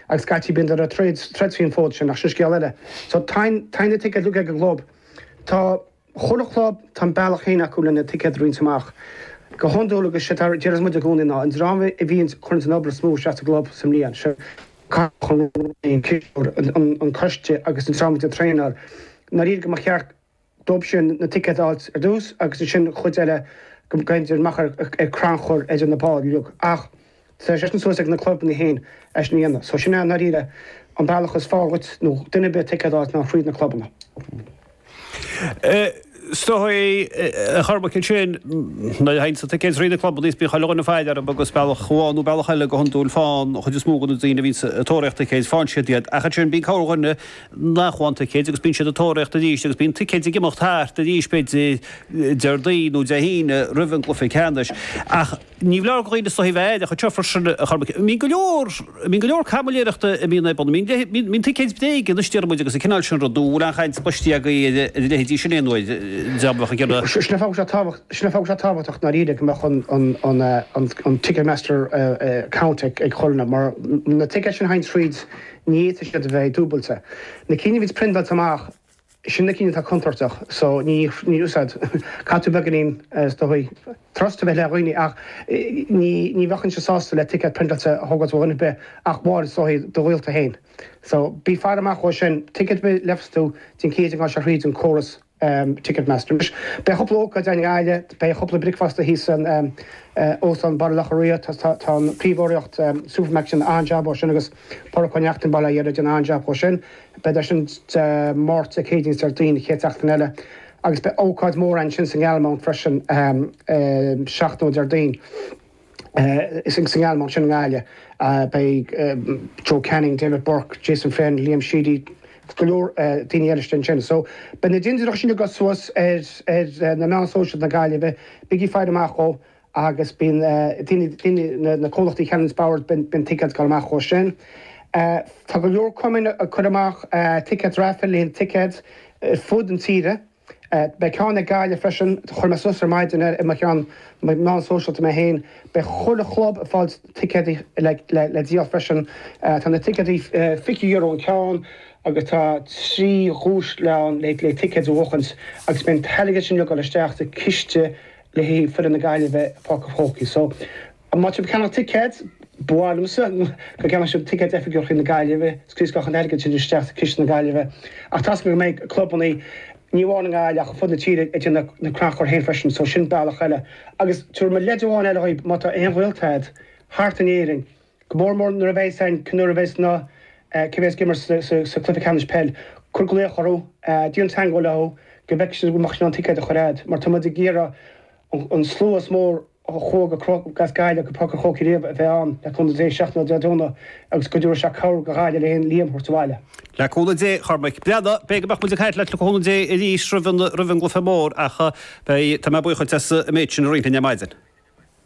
Agus scaití bíonndar ag troid faoin fód sin ach sin scéal eile. So tá na ticéid ag an gclub, tá chuile chlub, tá a mbealach féin acu lena ticéid a roinnt amach. Go hiondúil agus séard a deireanns muid i gcónaí ná an dream a bhíonn ag cur an obair is mó isteach sa gclub sa mbliain, sé cathaoirleach an chlub, an coiste agus an dream a bhíonn ag traenáil, ndáiríre go mba cheart go dóib sin na ticéid a fháilt ar dtús agus ansin an chuid eile go mbeinn Diarmaid amach ar crannchur idir na báireog ach tá sé sin suas ag na clubanna féin é sin a dhéanamh so sin é i ndáiríre an bealach is fearr dhuit nó duine ar bith ticéad a fháilt ná fríd na clubanna. Is dóichí a Chormaic ansin nuair a thaganns na ticéid thríd na clubanna is bíonn chuile dhuine ag faire orthu agus bealach amháin nó bealach eile go hiondúil faigheann an chuid is mó de na daoine a bhíonns ag tóraíocht ticéid faigheann siad iad ach ansin bíonn corrdhuine nach bhfaigheann ticéid agus bíonn siad ag tóraíocht arís agus bíonn ticéid ag imeacht thart arís b'fhéidir Déardaoin nó Dé hAoine roimh an gcluiche ceannais ach ní foláir do dhaoine is dóichí a bheith aireach anseo freisin a Chormaic. Bíonn go leor, bíonn go leor caimiléireachta a bhíonn ar bun, bíonn, bíonn, bíonn ticéid bréige anois deir muid agus an cineál sin rud nó an bhfuil aon chaint cloiste agaibh ar a leithéidí sin aon uair, dá mbeadh ag déanamh. Sin an fáth go raibh sé tábhacht, sin an fáth go raibh sé tábhachtach ndáiríre go mbeadh an, an, an, an, an Ticketmaster account ag, ag chuile dhuine mar na ticéid sin a théanns thríd, Ní fhéadfadh siad a bheith dúbailte. Na cinn a bhíonns priontáilte amach, sin na cinn atá contúirteach, so ní níl úsáid. Caithfidh tú beagáinín is dóichí trust a bheith le dhaoine ach ní ní bheinnse sásta le ticéad priontáilte a thógáilt ó dhuine ar bith ach amháin is dóichí do ghaolta féin. So bí ag faire amach dhó sin. Ticéad ar bith a gheobhas tú déan cinnte go ngabhfaidh sé thríd an córas. Ticketmaster. Anois, beidh cúpla ócáid againn i nGaillimh, beidh cúpla bricfeasta thíos san Óstán Baile Locha Riach, tá an príomhurraíocht Supermacs ag déanamh an-jab dhó sin agus Pádraic Ó Neachtain, Baile Átha an Rí, ag déanamh an-jab dhó sin. Beidar sin Dé Máirt, Dé Céadaoin is Déardaoin an chéad tseachtain eile. Agus beidh ócáid mhór ansin sa nGalmont freisin, seachtain ó Déardaoin. Sa nGalmont sin i nGaillimh, beidh Joe Canning, David Burke, Jason Flynn, Liam Sheedy, go leor daoine eile istigh ansin. So, beidh na dintiúireacha sin ag dul suas ar na meáin sóisialta na Gaillimhe, bígí ag faire amach dhó agus bíonn daoine, na comhlachtaí a cheannaíonns boird, bíonn ticéad ag dul amach dhó sin. Tá go leor cumainn ag cur amach ticéad raifil, le haghaidh an ticéad ar fud an tíre. Beidh ceann ag Gaillimh freisin. Chuir mé suas ar maidin ar mo cheann meán sóisialta mé féin. Beidh chuile chlub ag fáil ticéadaí le díol freisin. Tá na ticéadaí €20 an ceann agus tá trí dhuais ann le ticéid a bhuachaint agus beidh an t-airgead sin uilig ag dul isteach sa chiste le haghaidh foireann na Gaillimhe a bheith i bPáirc an Chrócaigh. Maidir le ceannach ticéad, ba mhaith liomsa go gceannódh siad ticéad Oifigigh Chontae na Gaillimhe, sroichfidh an t-airgead sin isteach sa Chiste na Gaillimhe, ach tá's agam go mbeidh clubannaí ní amháin i nGaillimh ach ar fud na tíre ag déanamh na crannchuir féin freisin so sin bealach eile. Agus tabharfaidh mé leid amháin eile dhaoibh, má tá aon ghaolta agat thart in Éirinn, go mór mór nuair a bheas an, nuair a bheas na cé a bheas ag imirt sa gCluiche Ceannais Peil, cuir glaoch orthu, déan teagmháil leo go bhfeicfidh siad an bhfuil sé in ann ticéad a chur chugat mar tá muid ag iarraidh an slua is mó a chuaigh as Gaillimh go Páirc an Chrócaigh riamh a bheith ann le cúnamh Dé seachtain ó Dé Domhnaigh agus cuidiú is cabhair go Ghaillimh le Liam a thabhairt abhaile. Le cúnamh Dé, a Chormaic. Beidh, beidh muid ag caint leat le cúnamh Dé arís roimh an roimh an gcluiche mór ach beidh tá mé buíoch díot as an méid sin a roinnt linn ar maidin.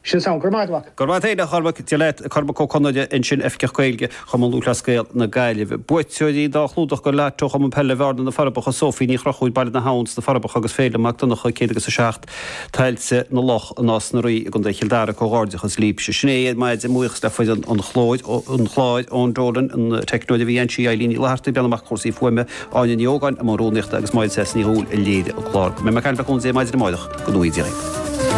Sin samhail. Go raibh, go raibh maith agat, a Chormaic. Dia leat. Cormac Ó Conghaile ansin, Oifigeach Gaeilge. Chumann Lúthchleas Gael na Gaillimhe. Buaiteoirí dhá chlúdach do lató Chumann Peile Bhearna, Na Forbacha, Sophie Ní Chruchúir, Baile na hAbhann sna Forbacha agus Féilim Mac Donnacha, 100 agus 7, Tailte na Loch, Nás na Rí i gContae Chill Dara. Comhghairdeachas libhse. Sin é ar maidin, mo bhuíochas le foireann an chláir, Eoin Dolan, an teicneoir a bhí anseo, Eileen Ní Fhlathartaigh, a bhreathnaigh amach do chúrsaí fuaime, Áine Ní Ógáin i mbun rúnaíochta agus Máire Treasa Ní Dhúill a léirigh an clár. Mé ar ais libh le cúnamh Dé maidin amárach go 19:00.